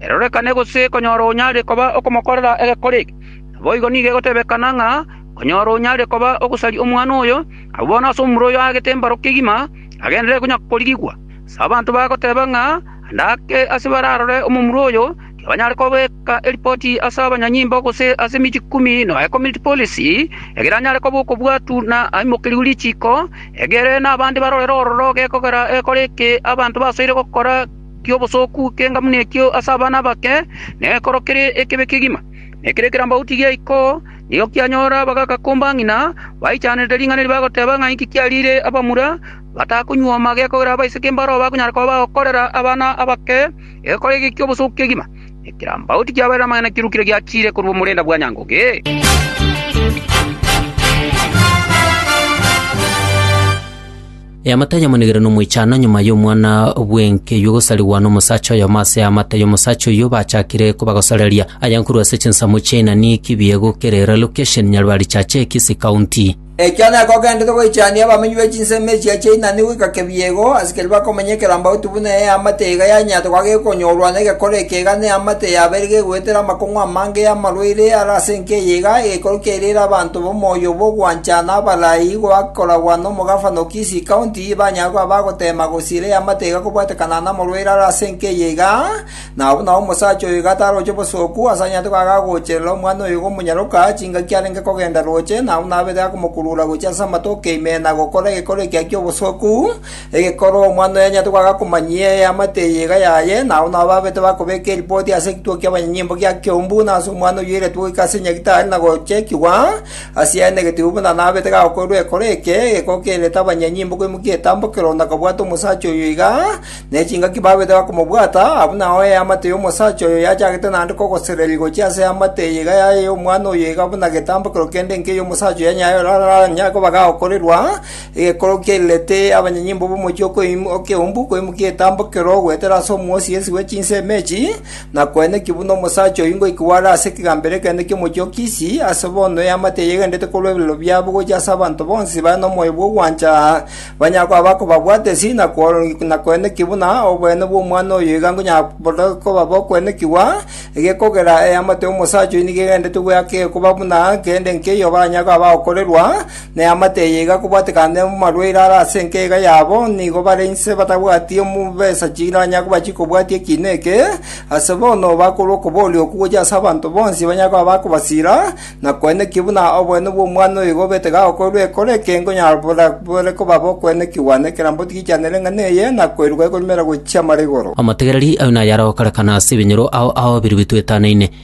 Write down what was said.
erorekane gose konyora onyare koba okomokorera egekore eke. Naboigo nigo egotebekana ng'a konyora onyare koba ogosaria omwana oyo, abwo bono ase omura oyo aagete mbaro kegima agenderere konya korigigwa. Ase abanto bagoteba ng'a ande ake ase bararore omomura oyo, tibanyare kobeka eripoti ase abanyanyimbo gose ase emechie ikomi nonya community policy, egere anyare koba okobwatu na aimokerigwe richiko, egere nabande barorere ororo gekogera egekore eke abanto basoire gokora. ki'obosooku k'engamuna ekio ase abana abake nekoro kere ekebe kegima. Na ekero ekerambauti giaikwa oo nigo kianyora abagakomba ng'ina baichanerete ring'ana eri bagoteba ng'a inki kiariire abamura batakonyuoma gekogera abaiseke mbaro abakonyara koba bagokorera abana abake egekora eke ki'obosooku kegima. Na ekerambauti kiabarire amang'ana kirukire giachiire korwa omorenda bwa nyangoge. Eamate ayamonigire nomoichano nyuma y'omwana bw'enkeyua gosarigwa nomosacha oyomo ase eamate y'omosacha oyio bachakire kobagosareria. Aya nkorwa ase chinsemo chia inani kibiegu kere relocation Nyarwari Chache Kisii County. Ekio nekogenderete goichania abamenyi be chinsemo echio chia inani goika kebiegu, ase keria bakomenya ekerambauti buna eamate iga yanyatorwa gekonyorwa negekora ekeiga neamate yabeire gegoetera amakong'u amange y'amarwaire are ase enka eye iga, egekoro kiairire abanto. Omoyo bw'ogwanchana abarai goakoragwa nomogafano o Kisii County banyare koba bagoteema gosiira eamate iga kobwetekana namorwaire are ase enka eye iga, na abwo nao omosacha oyo iga taroche obosooku ase anyarete koba agagocherera omwana oyo gomonyaroka chingaki arenge kogenda roche na buna abete akomokurura gochia ase amatoke ime na gokora egekoro ekiya ki'obosooku, Egekorwa omwana oyo anyarete goaka komanyia eamate eye iga yaye, na abwo nabo babete bakobeka eripoti ase ekituo ki'abanyanyimbo gia Keumbu, na ase omwana oyoiretwe goika ase Nyagitari na gochekigwa. Ase aye negetibe buna nabete gakoirwe ekoro eke, egekoo kerete abanyanyimbo koimokia etambokero na kobwata omosacha oyo iga, ne chingaki babete bakomobwata, abwo nao eamate y'omosacha oyo yachagete naende kogosereria gochia ase eamate eye iga yaye y'omwana oyo iga buna getambokero kende inke y'omosacha oyo yanyayo oraranyare koba gakoirwa, Egekoro kiairerete abanyanyimbo b'omochie o Keumbu koimokia egetambo kero goetera ase omwosi ensi bwe chinsemo echi, na koenekio buna omosacha oyio ngoikigwa are ase ekegambero ekenene ki'omochie o Kisi, ase bono eamate eye egendererete korwa eberero biabo gochia ase abanto bonsi bare nomoyo bw'ogwancha, banyare koba bakobabwatesi na koenekio buna oboene bw'omwana oyo iga nkonyaboria koba bokwenekigwa, egekogera eamate y'omosacha oyio nigo egendererete goeaka egekoba buna kende nkeiyo banyare koba bagokorerwa, na eamate eye iga kobwatekane amarwaire are ase enkega yabo, nigo bare inse batabwati omobesa chiranya koba chikobwatia ekiina eke, ase bono bakorwa okobooria okwo gochia ase abanto bonsi banyare koba bakobasira, na koenekio buna oboene bw'omwana oyo igo obete gagokorerwa ekero eke nkonyara bore koba bokoenekigwa nekerambe otigichanere eng'ana eye, na koeirwa ekoremera gochia amara igoro. Amategereri ayo nayare gokorekana ase ebinyoro ao aobiru bitwetanaine.